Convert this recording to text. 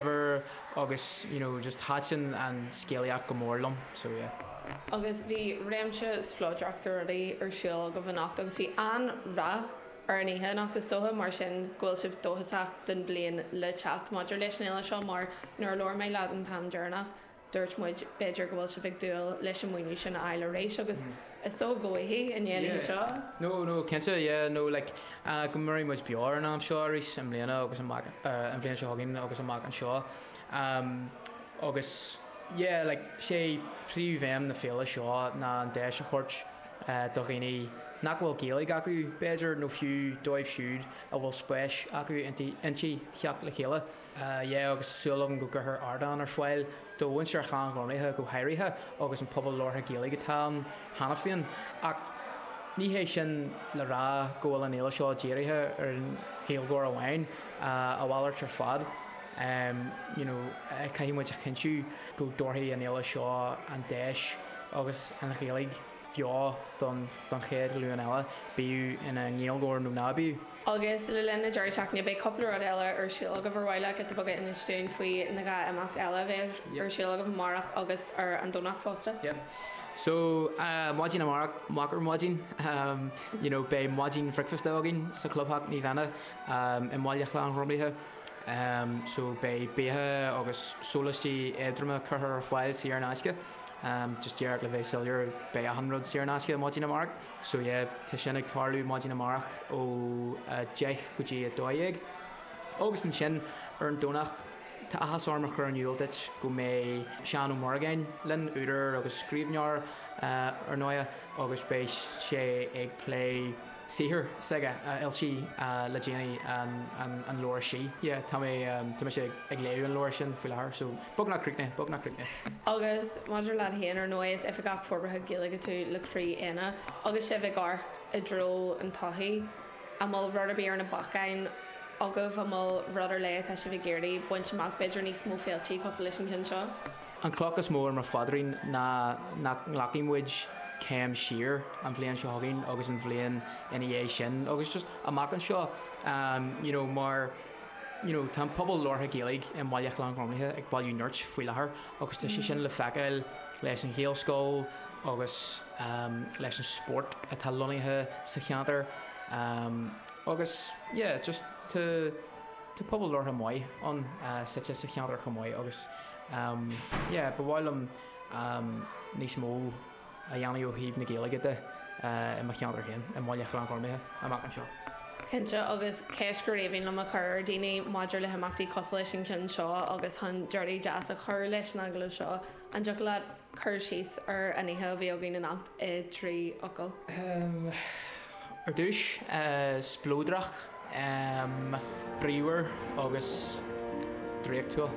whatever agus you know just thaitin an scéalaíocht go mór liom so yeah. Agus bhí réimse spleodrach de rudaí ar siúl agaibh anocht agus bhí an-rath ar an oíche anocht. Is dócha mar sin go bhfuil sibh dóchasach don bhliain le teacht maidir leis an fhéile seo mar nuair a labhair mé leat an t-am deireanach, Dúirt muid, b'fhéidir go bhfuil sibh ag dúil leis an maoiniú sin a fháil arís agus is dóigh go bhfaighidh, i ndéanaí anseo. No, no, cinnte, yeah, no, like, go mairfidh muid beo ar an am seo arís i mbliana agus amach, an bhliain seo chugainn agus amach anseo. Agus, yeah, like, sé príomhaidhm na féile seo ná an deis a thabhairt do dhaoine nach bhfuil Gaeilge acu, b'fhéidir, nó fiú dóibh siúd a bhfuil spéis acu inti, theacht le chéile. yeah agus tá súil agam go gcuirfear ardán ar fáil do mhuintir Ghleann Ghormlaithe go háirithe agus an pobal labhartha Gaeilge atá ann cheana féin ach ní hé sin le rá go bhfuil an fhéile seo dírithe ar an Ghaeilgeoir amháin, a mhalairt ar fad. you know caithfidh muid a chinntiú go dtabharfaidh an fhéile seo an deis agus an Ghaeilge bheo don chéad ghlúin eile, bíodh ina nGaeilgeoir nó ná bíodh. Agus le linn na deireadh seachtaine beidh cúpla rud eile ar siúl agaibh ar mhaith leat beagán a insint dúinn faoin dhá imeacht eile a bheidh ar siúl agaibh amárach agus ar an Domhnach fosta? Yep. So, maidin amárach, amárach ar maidin, you know beidh maidin bhricfeasta againn sa Chlubtheach Naomh Éanna i mBaile Ghleann Ghormlaithe. So beidh beatha agus sólaistí éadroma curtha ar fáil saor in aisce. Just díreach le bheith soiléir, beidh achan rud saor in aisce maidin amárach. So yeah, tá sin ag tarlú maidin amárach ó 10 go dtí 12. Agus ansin ar an Domhnach, tá áthas orm a chur in iúl duit go mbeidh Seán Ó Muireagáin linn, údar agus scríbhneoir, ar ndóighe, agus beidh sé ag plé saothar s'aige a fhoilsigh le déanaí, an leabhar Sí. Yeah, tá mé, tá mise ag léamh an leabhair sin faoi láthair, so. Beagnach críochnaithe, beagnach críochnaithe. Agus maidir leat féin, ar ndóigh, is Oifigeach Forbartha Gaeilge tú le Croí Éanna agus sibh ag amharc i dtreo an todhchaí. An bhfuil rud ar bith ar na bacáin agaibh? An bhfuil rud ar leith atá sibh ag iarraidh baint amach, b'fhéidir níos mó féiltí cosúil leis an gceann seo? An chloch is mó ar mo phaidrín ná nach nglacfaidh muid céim siar an bhliain seo chugainn agus an bhliain ina dhiaidh sin agus just amach anseo, you know, mar. you know Tá an pobal labhartha Gaeilge i mBaile Ghleann Ghormlaithe ag bailiú nirt faoi láthair agus tá sé sin le feiceáil leis an Ghaelscoil agus leis an spórt atá lonnaithe sa cheantar agus yeah just tá tá pobal labhartha maith ann suite sa cheantar chomh maith agus yeah ba mhaith liom níos mó a dhéanamh ó thaobh na Gaeilge de i mo cheantar féin, i mBaile Ghleann-Ghormaithe, amach anseo. Cinnte, agus ceist gur bhreá liom a chur ar dhaoine maidir le himeachtaí cosúil leis an gceann seo agus chun deireadh deas a chur leis an agallamh seo, an dtiocfadh leat cur síos ar an oíche a bhí againn anocht i dtrí fhocal? Ar dtús, spleodrach, bríomhar agus draíochtúil.